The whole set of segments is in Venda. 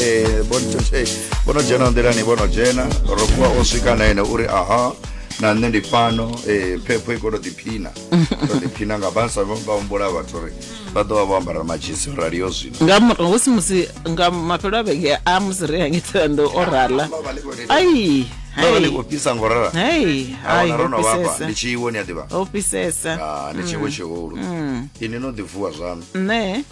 eh, vhono dzhena nḓilani vhono dzhena rokuwa o swika na ene uri aha na nṋe ndi fhano eh, phepho i koto ḓiphina to ḓiphina nga basa vha humbula vhathu uri vha ḓo vha vho ambara madzhisi rali yo zwino nga murahu hu si musi nga mafhelo a vhege a musi ri hangi tholanḓo o rala ai vha vha ni khou fhisa ngo rala hai hai ro no vhafha ndi tshi iwo ni a ḓivha o fhisesa Ah, ni tshiwo tshihulu ini no ḓivuwa zwaṋu nṋe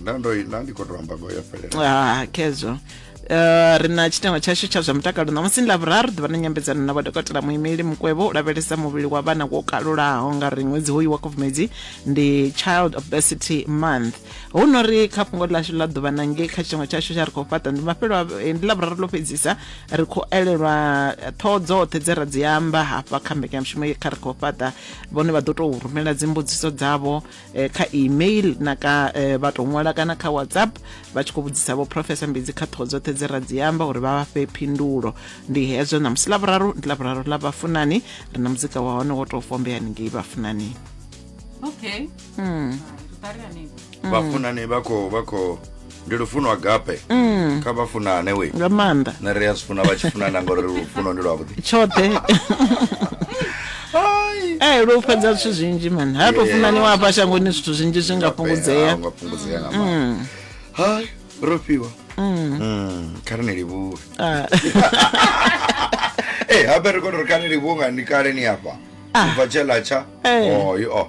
nda ndo nda ndi khou tou amba ngoyo fhelela Ah, khezwo Uh, ri na tshiteṅwa tshashu tsha zwa mutakalo ṋamusi ndi lavhuraru ḓuvha na nyambedzano na vhadokotela muimeli mukwevho u lavhelesa muvhili wa vhana wo kalulaho nga ri ṅwedzi hoyu wa khubvumedzi ndi child obesity month hu no ri kha fhungo ḽashu ḽa ḓuvha na ngei kha tshiteṅwa tshashu tsha ri khou fhaṱa ndi mafhelo a- eh, ndi lavhuraru ḽo fhedzisa ri khou elelwa eh, ṱhoho dzoṱhe dze ra dzi amba hafha kha mbekanyamushumo ye kha ri khou fhaṱa vhone vha ḓo tou rumela dzimbudziso dzavho eh, kha email na ka eh, vha tou ṅwala kana kha whatsapp vha tshi khou vhudzisa vho profesa mbidzi kha ṱhoho dzoṱhe dze ra dzi amba uri vha vha fhe phindulo ndi hezwo ṋamusi lavhuraru ndi lavhuraru ḽa vhafunani ri na muzika wa hone wo tou fombea ningei vhafunani okay mm. vhafunani vha khou vha khou ndi lufuno agape mm. kha vha funane we nga maanḓa na ri a zwi funa vha tshi funana ngori lufuno ndi lwavhuḓi tshoṱhe ee lwo fhedza zwithu zwinzhi mani ha to funaniwa hafha shangoni zwithu zwinzhi zwi nga fhungudzea nga fhungudzea nga maanḓa mm. hai ro fhiwa mm. mm, kha ri ni livhuwe ah. ee habe ri kone ri kha ni livhuwe nga ni kale ni afha ubva ah. tshe latsha eh. oyo oh, oh.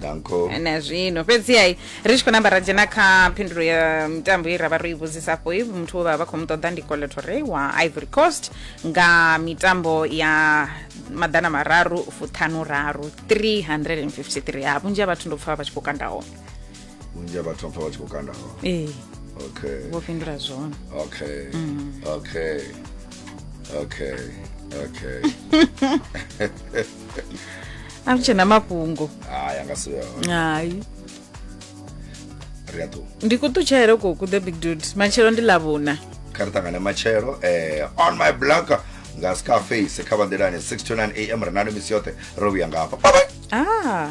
danko na zwino fhedziha i, ri tshi khou namba ra dzhena kha phindulo ya mitambo ye ra vha ro i vhudzisa afho i muthu we vha vha khou mu ṱoḓa ndi coletore wa ivory coast nga mitambo ya maḓana mararu fuṱhanu raru 353 ha vhunzhi ha vhathu ndo pfa vha tshi khou kanda hone vhunzhi ha vhathu mpfa vha tshi khou kanda hone ee okay vho fhindula zwone okay okay okay okay a ri tshena mafhungo hayi anga si vhe hone hayi ri a ṱuwa ndi kuṱutshele koku the big dude matshelo ndi ḽavhuna kha ri ṱangane matshelo eh, on my block nga scarface kha vha nḓilani 6 to 9 am ri nalo misi yoṱhe ro vhuya nga hafha bye bye ah